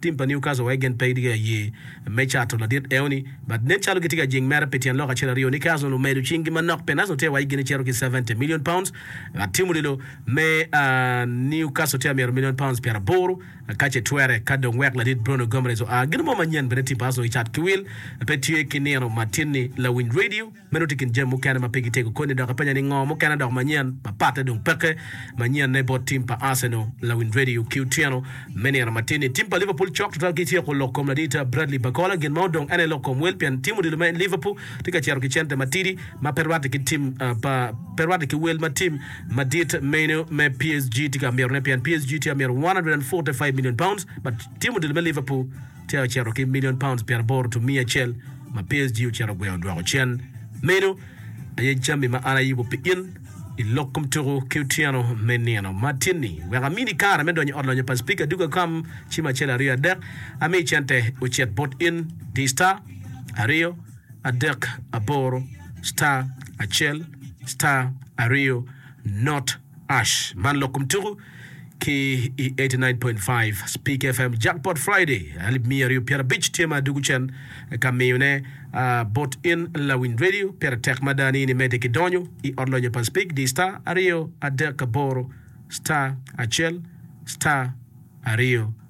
Tim pa Newcastle wai gen pe gitye ka ye me cato ladit eo ni, but nen calo gitye ka jing mere pi tyen lok acel aryo. Newcastle omedo cing gi manok pien Arsenal tye ka wai gin ecito ki seventy million pounds, but tim olilo me Newcastle tye ka myero million pounds pyer aboro kace twere ka dong wek ladit Bruno Gomeres oa. Gin mo manyen bene tim pa Arsenal gicat ki wil pe tye ki nino matin ni lawiny radio. Meno tye i kin jami mukene ma pe gitego koni, dok apenya ni ngo mukene dok manyen ma patte dong peke manyen ne bot tim pa Arsenal lawind radio ki otyeno me nino matin ni tim pa Liverpool cok tutwal ki tyeko lok kom ladita Bradley Bacola gin ma odong ene lok kom wel pien tim odilo me Liverpool tye ka cito ki cente matidi ma pe rwate ki tim pa pe rwate ki wel ma tim madit meno me PSG tye ka mito ne pien PSG tye ka mito £145 million but tim odilo me Liverpool tye ocito ki milion paunds pyeraboro to miya acel ma PSG ocito ogweyo odwoko cen. Meno aye jami ma an ayubo pi in i lok kom tuku ki otyeno me nino ma tye ni. Wek amini kare me donyo i ot lonyo pa Speaker Duke Akam ci ma acel aryo adek, ami cente ocit bot in di star aryo adek aboro star acel star aryo not. Ash, man lok kom tuku ki i eighty nine point five Speak FM Jackpot Friday alip miya aryo pyera abic tye ma dugu cen ka miyone bot in lawiny radio pire tek mada ni in imede ki donyo i ot lonyo pa Speak di star aryo adek aboro star acel star aryo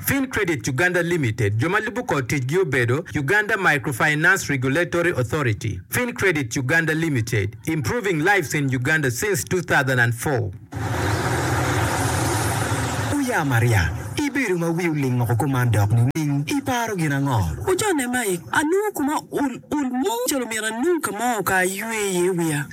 Fin Credit Uganda Limited, jo ma lubo kor ticgi obedo, Uganda Microfinance Regulatory Authority, Fin Credit Uganda Limited, improving lives in Uganda since two thousand and four. Oya Maria, ibedo ma wi oling woko kuman dok nining? Iparo gin ango? Ocone Mike, Anongo koma ul ul mo calo myero anong ka mo ka aywe iye wiya.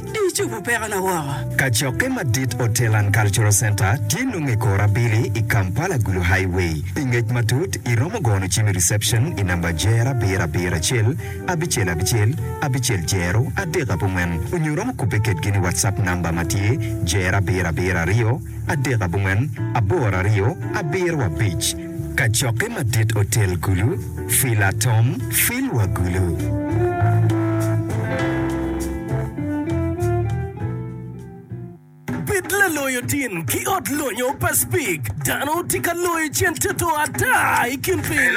Icubo pekona woko. Kacokke madit Hotel and Cultural Centre tye nongo i kor abili i Kampala Gulu Highway. Pi ngec matut, iromo gono cim i reception i namba Jer abiro abiro acel abicel abicel abicel jero adek abongwen onyo iromo kubbe kedgi ni WhatsApp namba ma tye Jer abiro abiro aryo adek abongwen aboro aryo abiro abic. Kacokke madit otel kulu, fil atom, fil wa gulu. Bed laloyo tin ki ot lonyo pa Speke. Dano tye ka loyo cen toto ata i kin piny.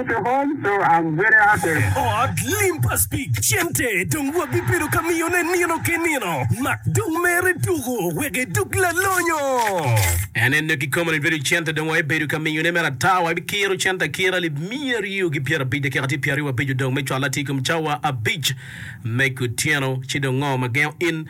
to home so I'm very happy. Te ot lim pa Speke cente dong wabibedo ka miyone nino ki nino. Mak dong mere tuko wek edog lalonyo. En ene kikome ni Dwedi cente dong wabibedo ka miyone mere ata. Wabikiro cente akira lib miya aryo ki pyerabic dakika tye pyeraryo abico dong me cwalo atir i kom cawa abic me kutyeno. Ci dong ngo ma gengo in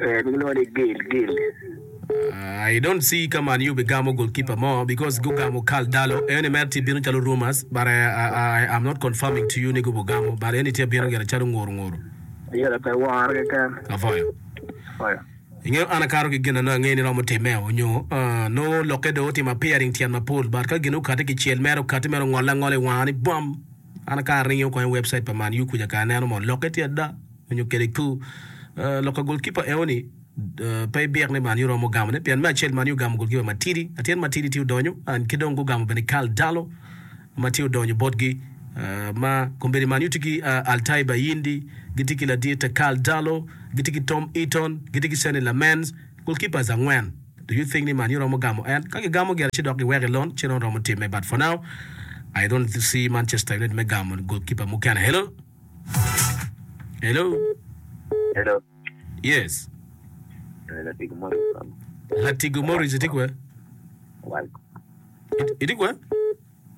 Ee, gilwongo ni Gil, Gil. Uh, I don't see ka Man U bigamo goalkeeper mo because gugamo Karl Darlow. Eni mere tye bino calo rumors but I, I, I am not confirming to you ni gubugamo but eni tye bino gire calo nguru nguru. Ayera pe woro keken. Apwoyo. Apwoyo. Ingeyo an akato ki gin na nongo angeyo ni romo timmeo nyo uh, nongo lokke dong otimo appearing tyen mapol but ka gin okati kicel mere okati mere ongolle angola i wanga ni bwam. An akato ni ngeyo kong i website pa Man U kuca kare aneno mo lokke tye ada. Onyo kede ku lok ka golkipa eo ni pe ibik ni man iromo gamo ne pien me acel man ogamo golkipa matidi atyen matidi tye odonyo and ki dong gugamo bene Karl Darlow ma tye odonyo botgi ma kombeddi man utye ki Altay Bayindi gitye ki ladite Karl Darlow gitye ki Tom Eaton gitye ki Sene Lamens golkipas angwen do you think ni man iromo gamo en ka gigamo gire ci dok giweko ilon ci nongo romo time but for now I don't see Manchester United me gamo golkipa mukene hello. Hello. Hello. Yes. Latigo Morris. Latigo Morris iti kwe? Awal. Iti kwe?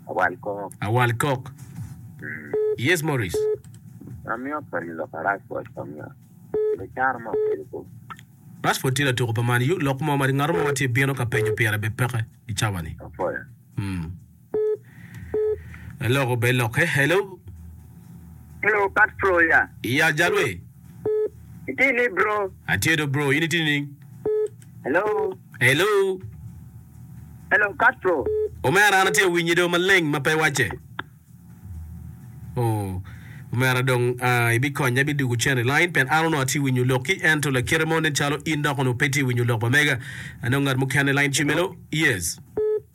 Awal kok. Awal kok. Mm. Yes Morris. Amiyo pa lok aras bot pamiyo. Ile charo mo kele ko. Rashford tye latuko pa Man U lok mo ma ngat mo ma tye bino ka penyo pire bepeke i cawa ni. Apoya. Mm. Aloko bed lokke. Hello. Hello Pat Floya. Ya jalwe. Itye ni bro? Atye do bro, in itye nining? Hello. Hello. Hello Pat Flo. Omera an atye awinyi do maleng ma pe wacce. Oh, omera dong uh, ibikonya ibidugo cen i line pien an onongo atye winyo lok ki ento lakite mo nen calo in dok onongo pe tye winyo lok bamega. Anongo ngat mukene i line ci melo. Yes.